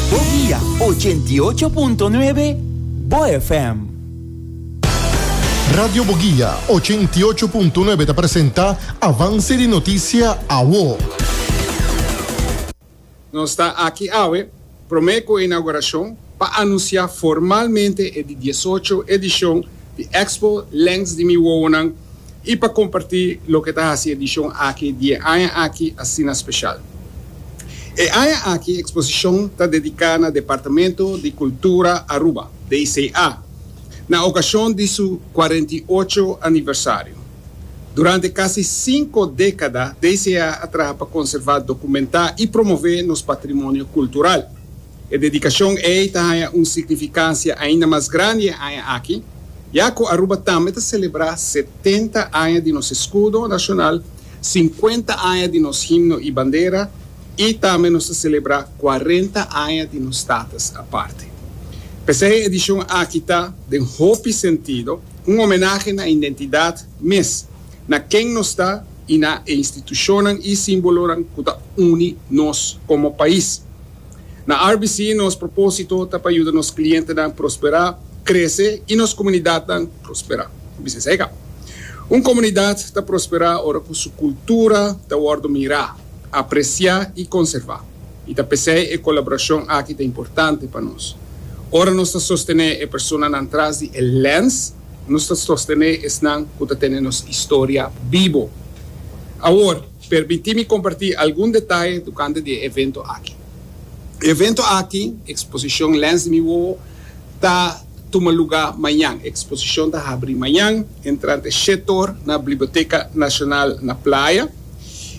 Bo via ochenta i ocho punto nuebe Bo FM. Radio Boguia ochenta i ocho punto nuebe ta presenta Avance di Noticia Awo. Nos ta aki awe prome cu e inauguracion pa anuncia formalmente e di diesocho edicion di Expo Length di Mi Wowonan i pa kompartí loke ta hasi edishon aki di e aña aki asina speshal. E aña aki eksposishon ta dediká na Departamento di Kultura Aruba, DICA, na okashon di su kuarenta i ocho aniversario. Durante kasi sinku dékada DICA a traha pa konservá, dokumentá i promové nos patrimonio kultural. E dedikashon ei ta haña un signifikasia ainda mas grandi e aña aki, ya ku Aruba tambe ta selebrá setenta aña di nos eskudo nashonal, sinkuenta aña di nos himno i bandera i tambe nos ta selebrá kuarenta aña di nos status aparte. P'esei e edishon aki ta, den hopi sentido, un omenahe na indentidat mes, na ken nos ta i na e institushonnan i símbolonan ku ta uni nos komo pais. Na RBC nos propósito ta pa yuda nos klientenan prosperá, krese i nos komunidatnan prosperá. Bisnis ei ka. Un komunidat ta prosperá ora ku su kultura ta wòrdu mirá, apresiá i konservá. I ta p'esei e kolaborashon aki ta importante pa nos. Ora nos ta sostené e personanan tras di e lèns, nos ta sostené esnan ku ta tene nos historia bibo. Awor. Permití mi kompartí algun detaye tokante di e evento aki. E evento aki, Eksposishon Lens di mi Wowo, ta tuma lugá mañan. Eksposishon ta habrí mañan entrante shet or na Bliboteka Nashonal na Playa.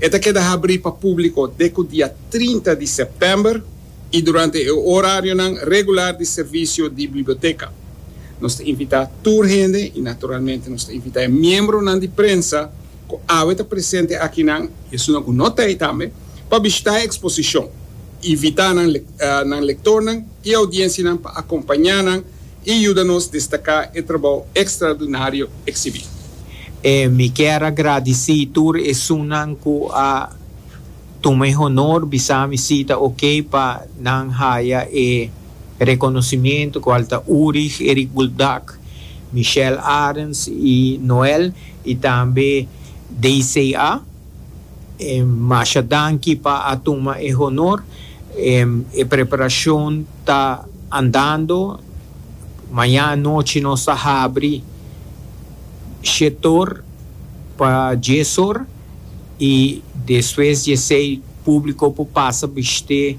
E ta keda habrí pa públiko dek ku dia trinta di sèptèmber i durante e orarionan regular di servisio di Bliboteka. Nos ta invitá tur hende i naturalmente nos ta invitá e miembronan di prensa, ku awe ta presente akinan i esunnan ku no ta ei tambe, pa bishitá e eksposishon. Invitá nan nan lektornan i audiensianan pa akompañá nan i yuda nos destaká e trabou ekstraordinario eksibí. Mi kier a gradisí tur esunnan ku a tuma e honor bisá mi si ta okey pa nan haya e rekonosimiento, kual ta Urig, Erik Buldak, Michelle Arends i Noel, Y tambe DCA, masha danki pa a tuma e honor. E preparacion ta andando. Mañana anochi nos ta habri shetor pa dies or y despues dies ei publico por pasa bishte.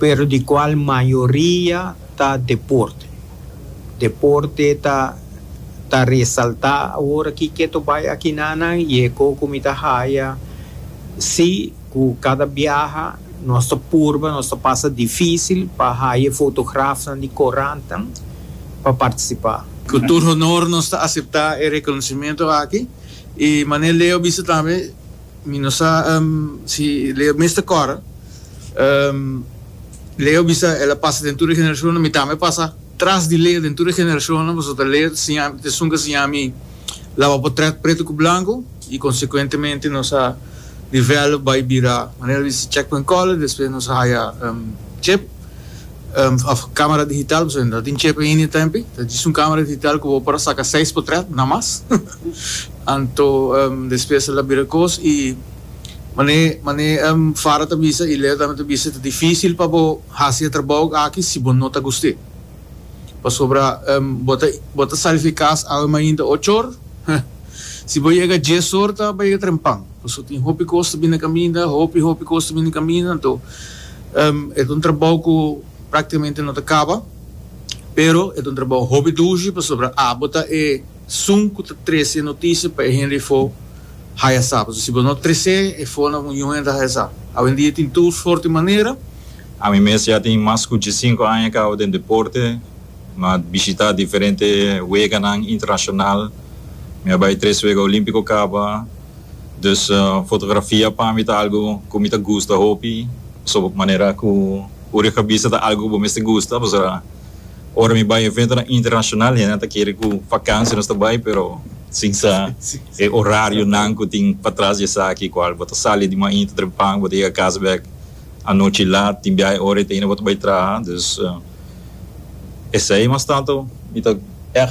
pero di cual mayoria ta deporte. Deporte ta ta resalta awor aki keto bay aki nanan y e co cu mi ta haya si cu cada biaha nos ta purba nos ta pasa dificil pa haya e fotografnan di corantan pa participa. Cu tur honor nos ta acepta e reconocimiento aki y Manel Leo bisa tambe. Mi no sa si Leo mester kòrda. Leo bisa el a pasa den tur e generashonnan. Mi tambe a pasa tras di Leo den tur e generashonnan, pasobra ta Leo ta esun ku a siña mi laba potrèt pretu ku blanku i konsekuentemente nos a develop bai bira manera di si check point color, despues nos a haya chip of camera digital, pasobra no tin chip ainda e tempi, ta djis un camera digital ku bo por a saka seis potrèt namas. Anto despesa la bira kos i mané mané Farah ta bisa i Leo tambe ta bisa ta difísil pa bo hasi e trabou aki si bo no ta gust'é. Pasobra bo ta bo ta sali fi kas awe mainta ocho or, si bo yega dies or ta bay yega trempan. Paso tin hopi kos ta bini kaminda, hopi hopi kos ta bini kaminda, anto e ta un trabou ku praktikamente no ta kaba, pero e ta un trabou hopi dushi pasobra abo ta e. Sun cu ta trece e noticia pa e hende efo haya sa. Pasobra si bo no trece efo na un hende haya sa. Awendia tin tours forte manera. Ami mes ya tin mas cu diesinco aña cabo den deporte. Mi a bishita diferente weganan internacional. Mi a bay tres wega olimpico caba. Dus fotografia pa mi ta algo cu mi ta gusta hopi. Pasobra manera cu ur yo cabisa ta algo cu bo mester gusta. Pasobra. Ora mi bai eventonan internashonal hende nan ta kere ku vakansia nos ta bai pero sin sa e orarionan ku tin patras di esaki kual bo ta sali di mainta trepang bo ta yega kas bèk anochi lat tin biaha e ora ei ta hina bo ta bai traha. Dus esei mas tantu mi ta èg.